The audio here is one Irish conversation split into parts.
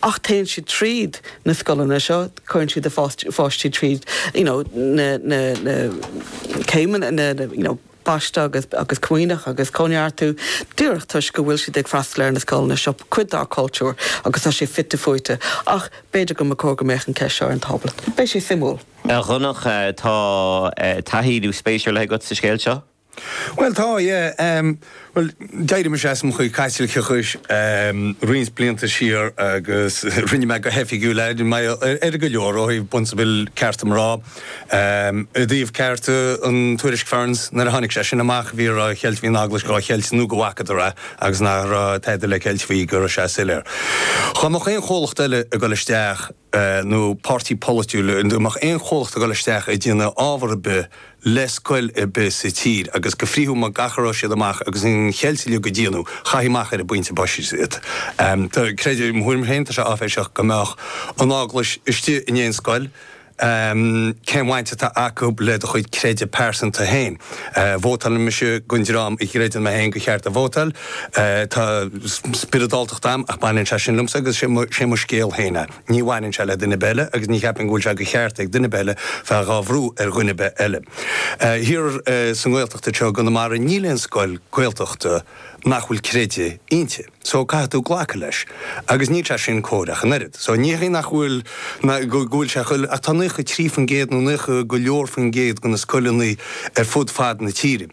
Ach téann siad tríd na scoileanna seo, cuireann siad a bpáistí tríd you know na na na céimeanna na na you know baiste agus agus Comaoineach agus Cóineartú díreach toisc go bhfuil siad ag freastal ar na scoileanna seo, cuid dár cultúr agus tá sé fite fuaite. Ach b'fhéidir go mba cóir go mbeadh an ceist seo ar an tábla. Beidh sé suimiúil. A Dhonncha, tá taithí nó spéis ar leith agat sa scéal seo? Bhuel, tá, yeah. Bhuel, d'éirigh mise as an gCaitliceachas roinnt blianta siar agus rinne mé go hoifigiúil é, rinne mé ar go leor ó thaobh bunsábháil, cearta mná, i dtaobh cearta an Tuairisc Ferns nuair a tháinig sé sin amach bhí a raibh á cheilt, bhí an Eaglais dhá cheilt nó go bhfacadar é agus nach raibh tada le ceilt faoi go raibh sé soiléir. Dhá mbeadh aon chomhlacht eile ag dul isteach. é nó páirtí polaitiúil nó dhá mbeadh aon chomhlacht ag dul isteach ag déanamh ábhar ar bith le scoil ar bith sa tír agus go frítheadh amach gach a raibh siad amach agus an cheilt uilig á déanamh, chaithfí amach ar an bpointe boise iad. Tá, creidim, i mo thuairim féin, tá sé áiféiseach go mbeadh an Eaglais istigh in aon scoil. Cén bhaint atá acu le do chuid creidimh pearsanta féin? Vótáilimse don dream a chreideann mé féin gur cheart a vótáil. Tá spioradáltacht agam ach baineann sé sin liomsa agus sé mo scéal féin é. Ní bhaineann sé le duine ar bith eile agus ní cheapfainn go bhfuil sé de cheart ag duine ar bith eile bheith dhá bhrú ar dhuine ar bith eile. Thiar sa nGaeltacht anseo i gConamara níl aon scoil Gaeltachta nach bhfuil creideamh inti. So caithfidh tú glacadh leis agus níl sé sin cóir ach an oiread. So ní hé nach bhfuil, go bhfuil sé ach tá naocha trí faoin gcéad nó naocha go leor faoin gcéad de na scoileanna ar fud fad na tíre,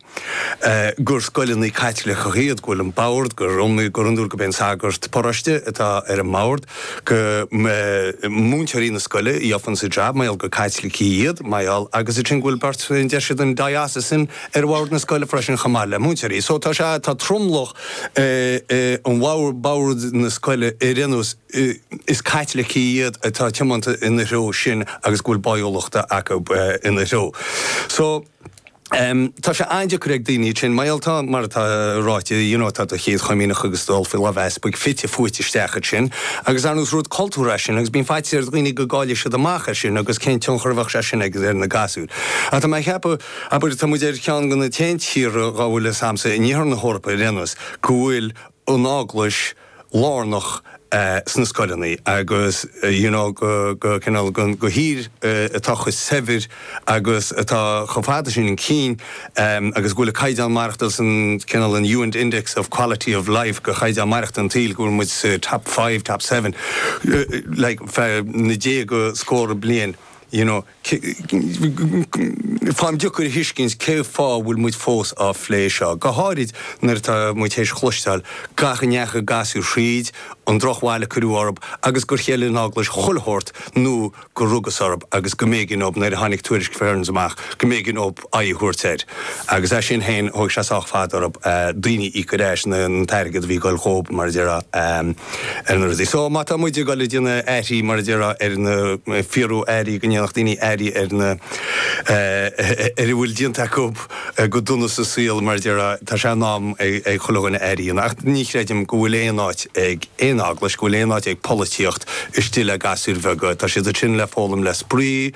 gur scoileanna Caitliceacha iad, go bhfuil an bord, gur iomaí gur iondúil gurb é an sagart paróiste atá ar an mbord, go múinteoirí na scoile, a sheans go mb'fhéidir gur Caitlicigh iad, mar gheall, agus ansin go bhfuil beirt, de chuid an diocesan, ar bhord na scoile freisin chomh maith le múinteoirí. So tá sé, tá tromlach an bhord, bord na scoile ar aon nós, is Caitlicigh iad atá tiomanta ina thaobh sin agus go bhfuil báúlacht acu ina thaobh. So. Tá sé an-deacair ag daoine ansin, mar atá ráite, you know, tá do chéad Choimíneach agus dul faoi lámh Easpaig fite fuaite isteach ansin agus ar ndóigh rud cultúrtha é sin agus bíonn faitíos ar dhaoine go gcaillfidh siad amach ar sin agus cén tionchar a bheadh sé sin acu ar na gasúir. Ach tá mé ag ceapadh, abair, tá muid ar cheann de na t-aon tíortha dá bhfuil a fhios a'msa in iarthar na hEorpa ar aon nós, go bhfuil an Eaglais, lárnach sna scoileanna agus you know go go cineál do do thír atá chomh saibhir agus atá chomh fada sin chun cinn agus go bhfuil an caighdeán maireachtail san cineál an UN index of quality of life de chaighdeán maireachtail an tsaoil go bhfuil muid sa top five top seven like feadh na déaga, scórtha bliain you know Tá sé an-deacair a thuiscint cé fáth a bhfuil muid fós á phlé seo, go háirid nuair atá muid théis chloisteáil gach a ndeachaigh gasúir thríd, an drochbhail a cuireadh orthu agus gur cheil an Eaglais chuile shórt nó gur rugadh orthu agus go mb'éigean dóibh, nuair a tháinig tuairisc Ferns amach, go mb'éigean dóibh. aghaidh a thabhairt air agus as sin féin thóig sé sách fada orthu daoine íoc ar ais na t-airgead a bhí ag dul dhób mar a déarfá ar na rudaí so má tá muid ag dul ag déanamh aithrí mar a déarfá ar na fíor-aithrí go ndéanfadh daoine aithrí ar na ar a bhfuil déanta acu go dona sa saol mar a déarfá tá sé in am ag chuile dhuine aithrí dhéanamh ach ní chreidim go bhfuil aon áit ag aon eaglais go bhfuil aon áit ag polaitíocht istigh le gasúir bheaga tá siad ansin le foghlaim le spraoi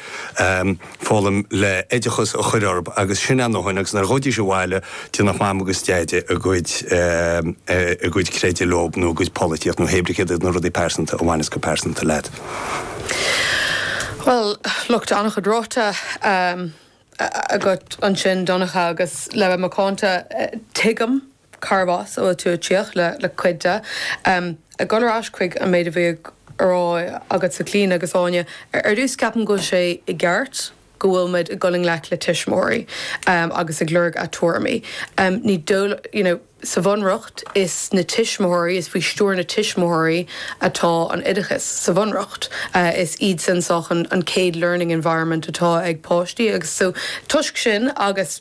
foghlaim le oideachas a chuir orthu agus sin a ndóthain agus nuair a ghabhfaidís abhaile déanfadh mam agus deaide a gcuid a gcuid creideamh leob nó a gcuid polaitíocht nó hébrí céard iad na rudaí pearsanta a bhaineas go pearsanta leat. Bhuel, tá an-chuid ráite agat ansin Donncha agus le bheith macánta tuigim Cárb as a bhfuil tú ag tíocht le cuid de. Ag dul ar ais chuig an méid a bhí á rá agatsa Colleen agus Áine, ar dtús ceapaim go bhfuil sé ceart go bhfuil muid ag dul i ngleic le tuismitheoirí agus ag lorg a tuairimí. Ní dóigh, you know, sa Bhunreacht is sna tuismitheoirí, is faoi stiúir na tuismitheoirí atá an oideachas sa Bhunreacht. Is iad sin saghas an chéad learning environment atá ag páistí agus so toisc sin agus,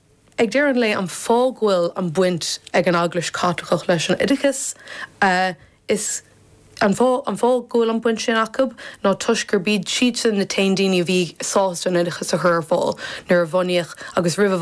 Ag deireadh an lae an fáth go bhfuil an baint ag an Eaglais Chaitliceach leis an oideachas is an fáth an fáth go bhfuil an baint sin acu ná toisc gurb iadsan na t-aon daoine a bhí sásta an oideachas a chur ar fáil nuair a bunaíodh agus roimh a